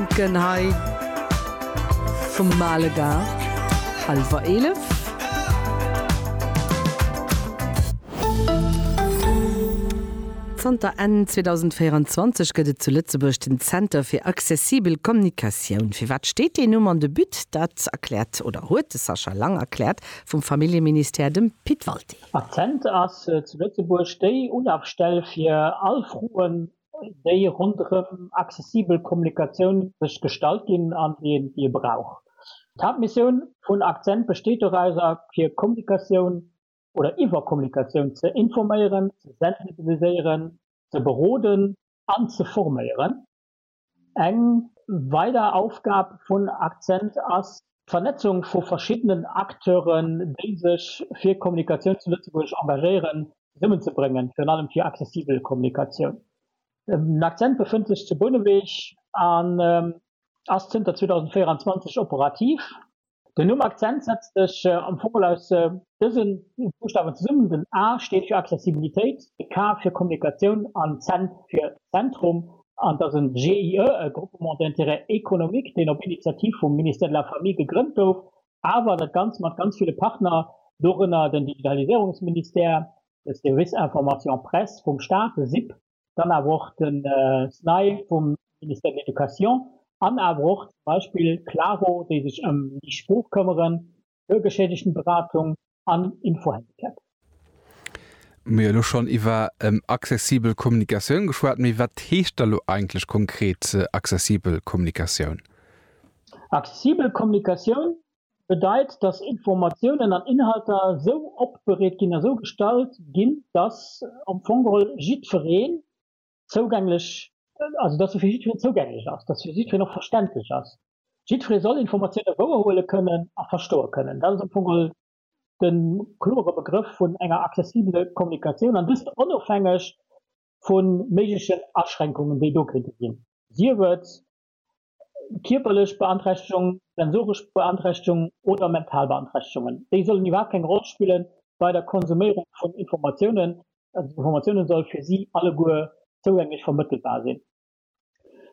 Denken hei vum Male Gard, hallwer 11. Zanter Enn 2024 gëtt et zu Lëtzebuerg den Zenter fir accessibel Kommunikatioun. Fir wat steet deen Numm an de But? Dat erkläert oder huet de Sascha Lang erkläert vum Familljeministère dem Pit Walté. Accent ass zu Lëtzebuerg déi Ulafstell fir all Froen déi ronderëm accessibel Kommunikatioun sech gestallt ginn an déi een, déi ee brauch. D'Haaptmissioun vun Akzent besteet dorauser, fir Kommunikatioun oder iwwer Kommunikatioun ze informéieren, ze sensibiliséieren, ze beroden an ze forméieren. Eng weider Aufgab vun Akzent ass, D'Vernetzung vu verschiddenen Acteuren, déi sech fir Kommunikatioun zu Lëtzebuerg engagéieren, zesummenzebréngen, virun allem fir accessibel Kommunikatioun. Den Akzent befënnt sech zu Bouneweg an ass zënter 2024 operativ. Den Numm Akzent setzt sech am Fong mol aus Dëse Buschtawen zesummen, den A steet fir Accessibilitéit, de K fir Kommunikatioun an d'Zen fir Zentrum. An et ass e GIE, e Groupement d'intérêt économique, deen op Initiativ vum Ministère de la Famille gegrënnt gouf, awer dat Ganzt mat ganz ville Partner, dorënner den Digitaliséierungsministère, de Service information presse vum Staat, de SIP, dann awer och de SNAI vum Ministère de l'Education an awer och zum Beispill d'Claro, déi sech ëm déi Sprooch këmmeren, Bürgerschädigenberatung an Info-Handicap. Mir hu elo schonn iwwer accessibel Kommunikatioun geschwat, mee wat heescht da lo eigentlech konkret accessibel Kommunikatioun? Accessibel Kommunikatioun bedeit, dass Informatiounen an Inhalter sou opbereet ginn a sou gestalt ginn, dass am Fong geholl jiddweree zougänglech, also datt se fir jiddwereen zougänglech ass, datt se fir jiddwereen och verständlech ass. Jiddweree soll Informatioune wouer huele kënnen a verstoe kënnen. Dat ass am Fong all de klore Begrëff vun enger accessibele Kommunikatioun, an dëst onofhängeg vu méiglechen Aschränkungen, déi do kéinte ginn, sief et kierperlech Beanträchtegung, sensoresch Beanträchtegung oder mental Beanträchtegungen. Déi sollen iwwerhaapt keng Roll spille bei der Konsuméierung vun Informatiounen. Informatiounen soll fir si alleguer zougänglech vermëttelbar sinn.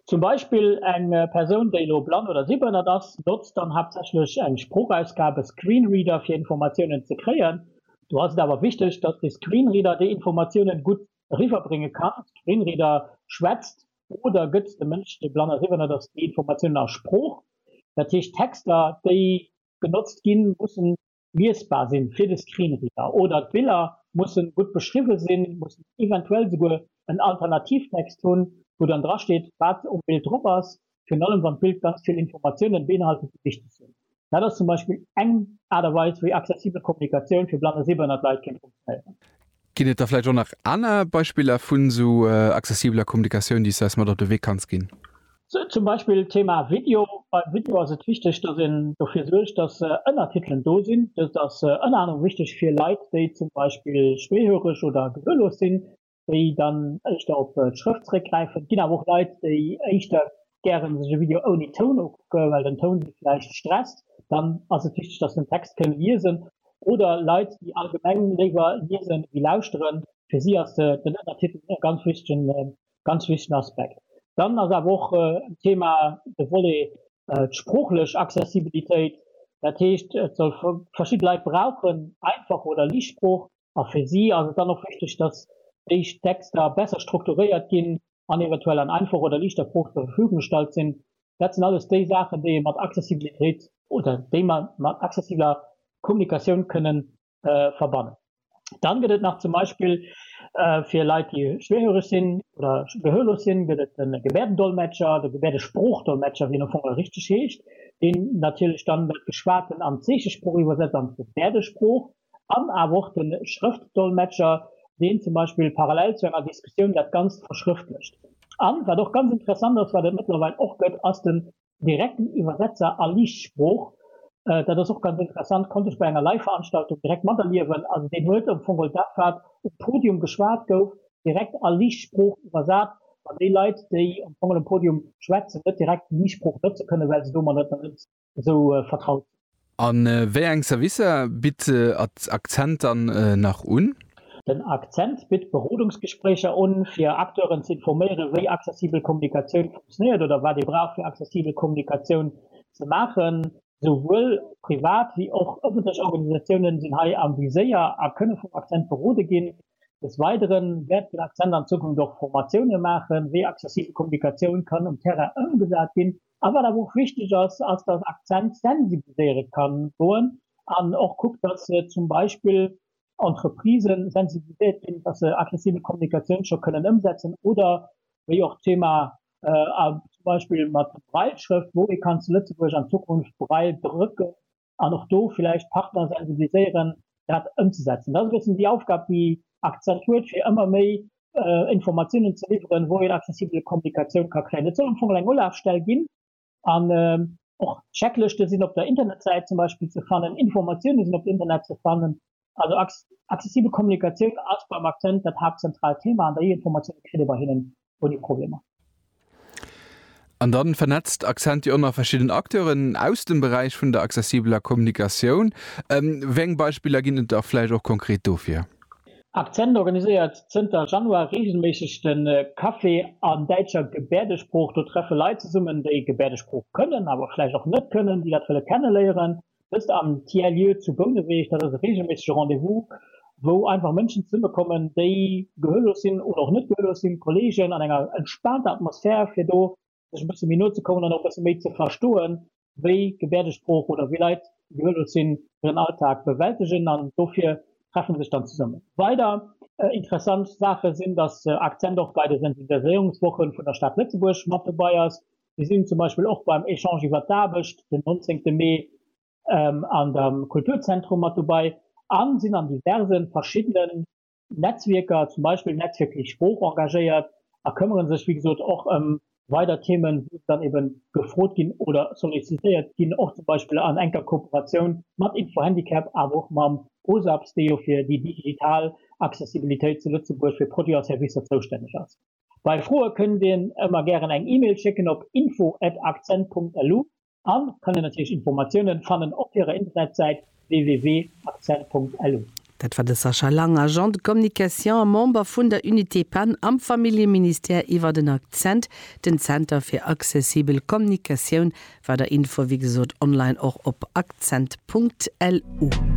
Zum Beispill eng Persoun, déi elo blann oder sehbehënnert ass, notzt dann haaptsächlech eng Sproochausgab, e Screenreader, fir Informatiounen ze kréien. Do ass et awer wichteg, dass de Screenreader déi Informatiounen gutt eriwwerbrénge kann. Screenreader schwätzt oder gëtt de Mënsch, dee blann a siwwernert ass, déi Informatiounen a Sprooch? Dat heescht, d'Texter, déi genotzt ginn, mussen liesbar sinn fir de Screenreader oder d'Biller mussen gutt beschriwwen sinn, mussen eventuell esouguer en Alternativtext hunn, wou dann drasteet, wat um Bild drop ass, virun allem wann d'Bild ganz vill Informatiounen beinhaltet, déi wichteg sinn. Dat ass zum Beispill eng Aart a Weis, wéi accessibel Kommunikatioun fir blann a sehbehënnert Leit kéint funktionéieren. Ginn et da vläicht och nach aner Beispiller vun esou accessibeler Kommunikatioun, déi s de eis mat op de Wee kanns ginn? Zum Beispill d'Thema Video. Beim Video ass et wichteg, dass een dofir suergt, dass Ënnertitelen do sinn. Dëst ass ënner anerem wichteg fir Leit, déi zum Beispill schwéihöreg oder gehörlos sinn. déi dann éischter op d'Schrëft zeréckgräifen. Et ginn awer och Leit, déi éischter gären sech e Video ouni Toun ukucke well den Toun si vläicht stresst. Dann ass et wichteg, dass se den Text kënne liesen. Oder Leit, déi allgemeng léiwer liese wéi lauschteren, fir si ass den Ënnertitel e ganz wichtegen, ganz wichtegen Aspekt. Dann ass awer och en Thema de Volet d'sproochlech Accessibilitéit. Dat heescht, et soll, verschidde Leit brauchen einfach oder liicht Sprooch, A fir si ass et dann och wichteg, dass déi Texter besser strukturéiert ginn an eventuell an einfach oder liichter Proof zur Verfügung gestallt sinn. Dat sinn alles déi Saachen, déi ee mat Accessibilitéit, oder déi mer mat accessibeler Kommunikatioun kënnen verbannen. Dann gëtt et nach zum Beispill fir Leit, déi schwierhöreg sinn oder gehörlos sinn, gëtt et de Gebärdendolmetscher, de Gebärdesprooch-Dolmetscher, wéi en am Fong och richteg heescht, deen natierlech dann dat Geschwaten an d'Zeechesprooch iwwersetzt, an d'Gebärdesprooch. An awer och de Schrëftdolmetscher, deen zum Beispill parallel zu enger Diskussioun dat Ganzt verschrëftlecht. An, wat och ganz interessant ass, wat et mëttlerweil och gëtt, ass den direkten Iwwersetzer a Liichtsprooch. Dat ass och ganz interessant, konnt ech bei enger Live-Veranstaltung direkt materliewen. Also deen huet am Fong geholl dat, wat um Podium geschwat gouf, direkt a Liichtsprooch iwwersat, wann déi Leit, déi am Fong geholl um Podium schwätzen, net direkt d'Liichtsprooch notze kënnen, well se domadder net esou vertraut sinn. A wéi eng Servicer bitt Accent dann nach un? Den Accent bitt Berodungsgespréicher un, fir Acteuren ze informéieren, wéi accessibel Kommunikatioun funktionéiert oder wat ee brauch, fir accessibel Kommunikatioun ze maachen. Souwuel privat wéi och ëffentlech Organisatiounen sinn hei am Viséier a kënne vum Accent berode ginn. Des Weidere wäert den Accent an Zukunft och Formatioune maachen, wéi accessibel Kommunikatioun kann um Terrain ëmgesat ginn. A wat awer och wichteg ass, ass, dass Accent sensibiliséiere ka goen an och kuckt, dass zum Beispill Entreprisë sensibiliséiert ginn, dass se aggressive Kommunikatioun scho kënnen ëmsetzen oder wéi och d'Thema zum Beispill mat Braille-Schrëft, wou ee kann zu Lëtzebuerg an Zukunft Braille drëcken. an och do villäicht d'Partner sensibiliséieren, dat ëmzesetzen. Dat ass e bëssen déi Aufgab, déi Accent huet, fir ëmmer méi Informatiounen ze liwweren, wou een accessibel Kommunikatioun ka kréien. Et soll am Fong eng Olafstell ginn an och d'Checklëschte sinn op der Internetsäit zum Beispill ze fannen, Informatioune sinn op der Internetsäit ze fannen, Also accessibel Kommunikatioun ass beim Accent dat haaptzentraalt Thema an der E-Informatioun, dat kritt ee bei hinnen ouni Problemer. An dann vernetzt Accent jo och nach verschidden Acteuren aus dem Beräich vun der accessibeler Kommunikatioun. Wéi eng Beispiller ginn et da vläicht och konkret dofir? Accent organiséiert zënter Januar reegelméisseg de Café an däitscher Gebäerdesprooch. Do treffe Leit zesummen, déi Gebäerdesprooch kënnen, awer vläicht och net kënnen, déi dat wëlle kenneléieren. Dëst am Tiers-Lieu zu Bouneweg, dat ass e reegelméissege Rendez-vous, wou einfach Mënschen zesummekommen, déi gehörlos sinn oder och net gehörlos sinn, Kolleegen an enger entspaanter Atmosphär, fir do sech e bësse méi no ze kommen an och e bësse méi ze verstoen, wéi Gebäerdesprooch oder wéi Leit, déi gehörlos sinn, hiren Alltag bewältegen. An dofir treffe se sech dann zesummen. Weider interessant Saache sinn, dass Akzent och bei de Sensibiliséierungswoche vun der Stad Lëtzebuerg mat dobäi ass, Mir sinn zum Beispill och beim Echange iwwer d'Aarbecht den 19 Mee an der Kulturzentrum mat dobei a sinn an diverse verschiddenen Netzwierker, zum Beispill Netzwierk fir d'Sprooch, engagéiert a këmmere sech, wéi gesot, och ëm weider Themen, wou se dann ebe gefrot ginn oder sollicitéiert ginn, och zum Beispill an enker Kooperatioun mat Info-Handicap, awer och mam OSAPS, dee jo fir déi digital Accessibilitéit zu Lëtzebuerg fir Produiten a Servicer zoustänneg ass. Bei Froe kënnt een ëmmer gären eng Email schécken op info at akzent.lu an kann een natierlech Informatiounen fannen op hirer Internetsäit www.akzent.lu. Dat war de Sascha Lang, Agent de communication a Member vun der Unité pan am Familljeministère iwwer den Akzent, den Zenter fir accessibel Kommunikatioun. Weider Infoe wéi gesot online och op akzent.lu.